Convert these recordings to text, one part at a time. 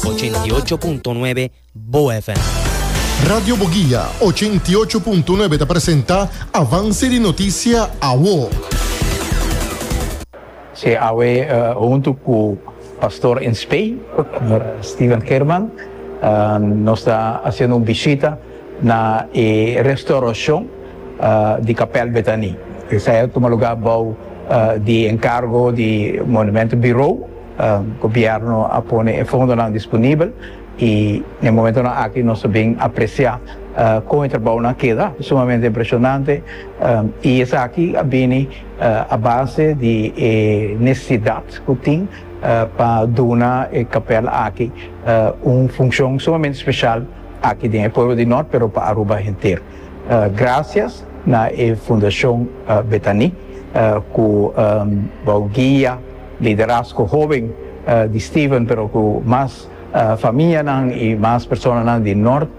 Ochenta i ocho punto nuebe Bo FM. Radio Boguia ochenta i ocho punto nuebe ta presenta Avance di Noticia Awo. Si awe huntu cu Pastor in Spain, Señor Steven Geerman, nos ta haciendo un bishita na e restauracion di Kapel Bethanie. Esai a tuma lugar bao di encargo di Monumento Bureau. Gobièrnu a pone e fondonan disponibel i na e momentonan aki nos ta bin apresiá kon e trabounan a keda sumamente impreshonante i esaki a bini a base di e nesesidat ku tin pa duna e kapèl aki un funshon sumamente speshal aki den e pueblo di Nort pero pa Aruba henter. Grasias na e Fundashon Betani ku wou guia. Liderazgo hoben di Stephen pero ku mas famianan i mas personanan di nort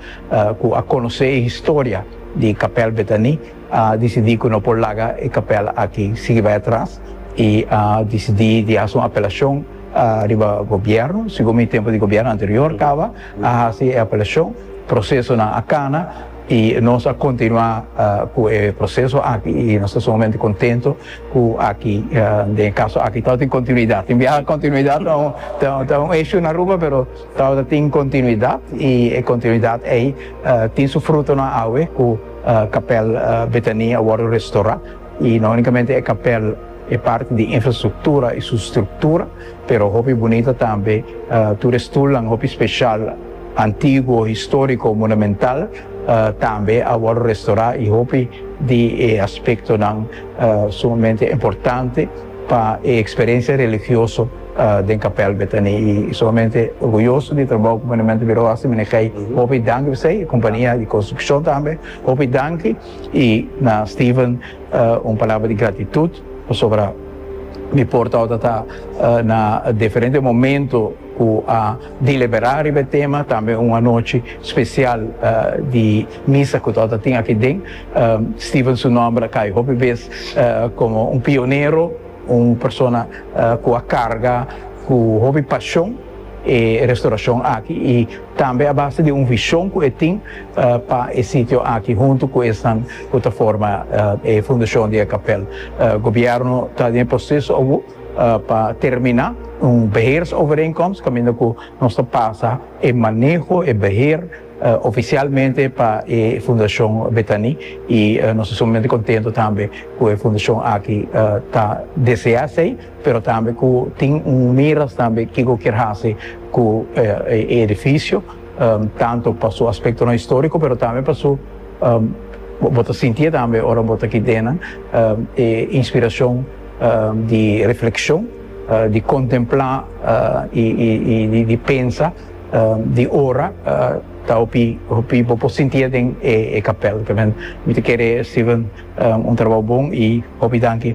ku a konosé e historia di Kapèl Betani a disidí ku no por laga e kapèl aki sigui bai atras i a disidí di hasi un apelashon riba gobièrnu. Sigun mi tempu di gobièrnu anterior kaba a hasi e apelashon, prosesonan a kana. y nos a continua cu e proceso aki y nos ta sumamente contento cu aki den e caso aki tawata tin continuidad, tin biaha continuidad ta un issue na Aruba pero tawata tin continuidad y e continuidad ey tin su frutonan awe cu Kapel Betania a wordo restora y no unicamente e kapel. E parti di infrastruktura i su struktura, pero hopi bunita tambe, tur e stulnan hopi speshal, antiguo, historiko, monumental, tambe a wòrdu restorá i hopi di e aspektonan sumamente importante pa e eksperensia religioso den kapèl Betani i sumamente orguyoso di e trabou ku Monumentenburo a hasi, meneer Gey, hopi danki pa esei, kompania di konstrukshon tambe, hopi danki. y na Steven un palabra di gratitud pasobra mi por ta tabata na diferente momento cu a delibera riba e tema tambe un anochi special di misa cu tabata tin akinden Steven su nomber a cay hopi bes como un pionero un persona cu a carga cu hopi pasion. e restaurashon aki i tambe a base di un vishon ku e tin pa e sitio aki huntu ku esnan ku ta forma e fundashon di e kapèl. Gobièrnu ta den e proseso awo pa terminá un beheersovereenkomst kaminda ku nos ta pasa e maneho, e beheer, ofisialmente pa e fundashon Betaní i nos ta sumamente kontento tambe ku e fundashon aki ta deseá esei. pero tambe cu tin un miras tambe kico kier haci cu e edificio, tanto pa su aspectonan historico, pero tambe pa su, bo ta sinti'e tambe ora bo ta kidennan, e inspiracion di reflexion, di contempla y di pensa, di ora, ta hopi hopi bo por sinti'e den e capel. Mi ta kere Steven un trabou bon y hopi danki.